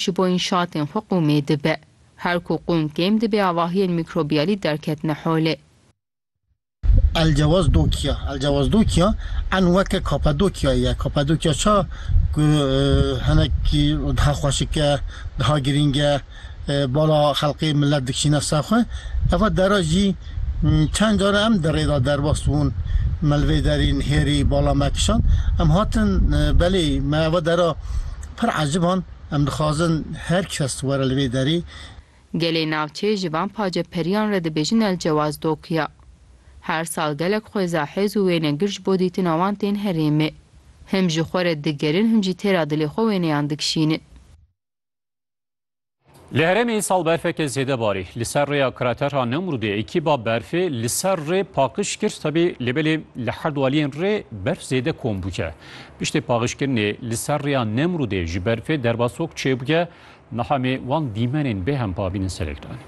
ji bo înşatên xwe qûmê dibe. Her ku qûm kêm dibe avahiyên mîkrobiyalî derketine holê. Elcewaz Dokya Elcewaz Dokya en weke Kapadokyayê ye. Kapadokya ça ku hinekî daha xweşik e, daha girîng e, bala xelqê milet dikişîne ser xwe. Eva dera jî çend care em di rê de derbas bûn, Melvê Derîn, Hêrî, Bala Mekişan. Em hatin belê me eva dera. Pir eciban, em dixwazin her kes were li vê derê. Gelê navçeyê ji van pace periyan re dibêjin El Cewaz Dokiya. Her sal gelek xwêza hêz û wênegir ji bo dîtina wan tên herêmê. Him ji xwe re digerin him jî têra dilê xwe wêneyan dikişînin. Li herêmê îsal berfeke zêde barî. Li ser rêya krater a Nemrûdê ekîba berfê li ser rê paqiş kir tevî lê belê li her du aliyên rê berf zêde kom bûye. Piştê paxişkirinê li ser rêya Nemrûdê ji berfê derbasok çêbûye. Niha em ê wan dîmenên bê hempa bînin serê giranê.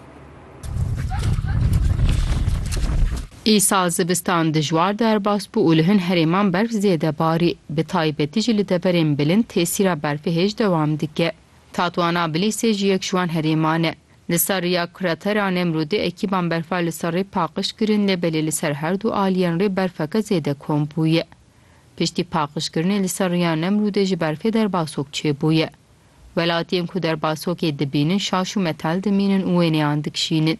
Îsal zivistan dijwar derbas bû û li hin herêman berf zêde barî. Bi taybetî jî li deverên bilind tesîra berfê hêj dewam dike. Tatwana Bilîsê jî yek ji wan herêman e. Li ser rêya kratera Nemrûdê ekîban berfa li ser rê paqij kirin lê belê li ser her du aliyên rê berfeke zêde kom bûye. Piştî paqijkirinê li ser rêya Nemrûdê ji berfê derbasok çêbûye. Welatiyên ku derbasokê dibînin şaş û metal dimînin û wêneyan dikişînin.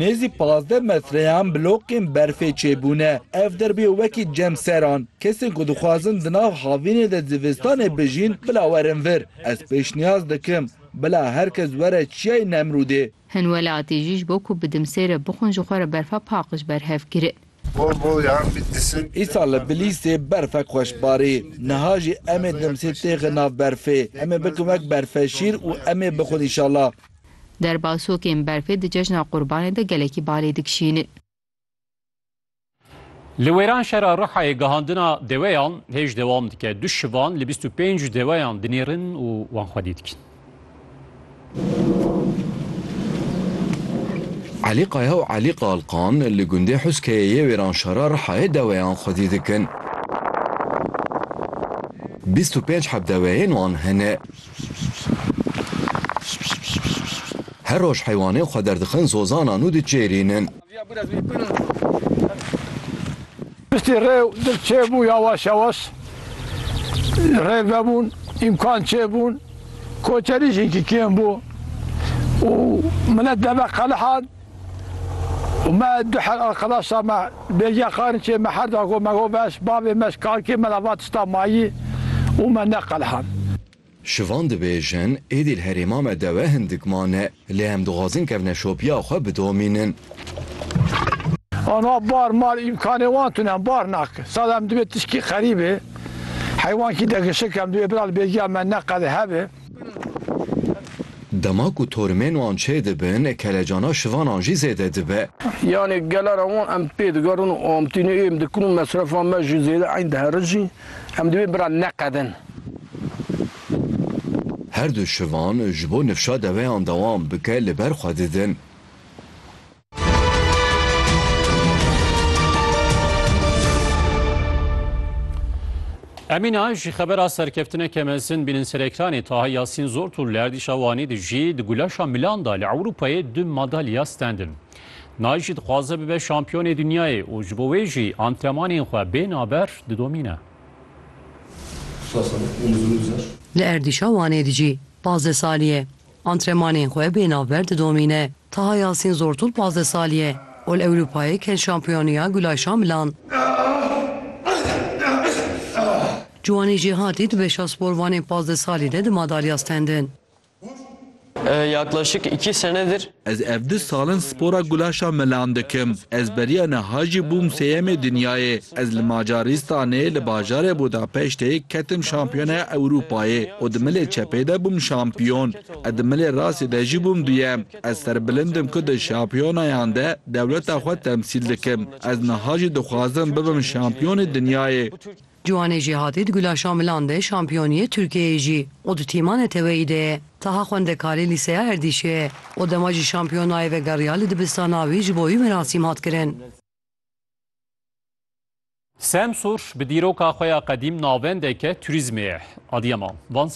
Nêzî pazdeh metreyan blokên berfê çêbûne. Ev der bûye wekî cemseran. Kesên ku dixwazin di nav havînê de zivistanê bijîn bila werin vir. Ez pêşniyaz dikim bila her kes were Çiyayê Nemrûdê. Hin welatî jî ji bo ku bi dimsê re bixwin ji xwe re berfa paqij berhev kirin. Îsal li Bilîstê berfek xweş barî. Niha jî em ê dimsê têxin nav berfê. Em ê bikin wek berfeşîr û em ê bixwin înşallah. Derbasokên berfê di cejna Qurbanê de gelekî balê dikişînin. Li wêran şera Rihayê gihandina deweyan hêj dewam dike. Du şivan li bîst û pênc deweyan dinêrin û wan xwedî dikin. Elî Kaya û Elî Kalkan li gundê Huskeyê yê Wêranşara Rihayê deweyan xwedî dikin. Bîst û pênc heb deweyên wan hene. Her roj heywanên xwe derdixin zozanan û diçêrînin. Piştî rê û dil çêbû yawaş yawaş rê vebûn, îmkan çêbûn, koçerî jî hinkî kêm bû û milet deve qelihan û me du her arqedaşa me bêgiya Qarinçê me her da got me got veş bavê me ji kakê me re va tişta mayî û me neqelihan. Şivan dibêjin, Êdî li herêma me dewe hindik mane, lê em dixwazin kevne şopiya xwe bidomînin. Aniha bar mar îmkanê wan tune, bar nak. Sala em divê tişkî qerî bê. Heywankî degişik, em divê bira li bêgiya me neqede hebe. Dema ku torimên wan çê dibin, kelecana şivanan jî zêde dibe. Yanê gelara wan em pê digerin û amtînê êm dikin û mesrefa me jî zêde eyn diherijîn. Em divê biran neqedin. Her du şivan ji bo nifşa deveyan dewam bike li ber xwe didin. Emîna, ji xebera serkeftineke mezin bînin ser ekranê Taha Yasîn Zortû li erdîşa Wanê dijî di gulaşa milan de li Ewropayê du madalya stendin. Nayî jî dixwaze bibe şampiyonê dinyayê û ji bo wê jî antrenmanên xwe bê naber didomîne. Li erdîşa Wanê de jî pazdeh salî ye antrenmanên xwe bê navber didomîne. Taha Yasîn Zortûl pazdeh salî ye û li Ewropayê ket şampiyoniya Gulay Şamilan. Ciwanî Jêhatî di beşa sporvanên pazdeh salî de di madalya stend in. Yaklaşık iki senedir Ez ev du salin spora gulaşa melan dikim. Ez beriya niha jî bûm sêyemê dinyayê. Ez li Macarîstanê li bajarê Budapeştê ketim şampiyoneya Ewrûpayê û di milê çepê de bûm şampiyon. Ez di milê rastê de jî bûm duyem. Ez serbilind im ku di şampiyonayan de dewleta xwe temsîl dikim. Ez niha jî dixwazim bibim şampiyonê dinyayê. Ciwanê Jêhatî di Gulaşa Milan de şampiyoniyê Tirkiyeyê jî û di tîma neteweyî de ye. Taha xwendekarê lîseya Erdîşê ye û dema jî şampiyon nayê vegeriya li dibistana wî ji bo wî merasîm hat kirin. Semsûr bi dîroka xwe ya qedîm navendeke turîzmê ye. Adıyaman, Van,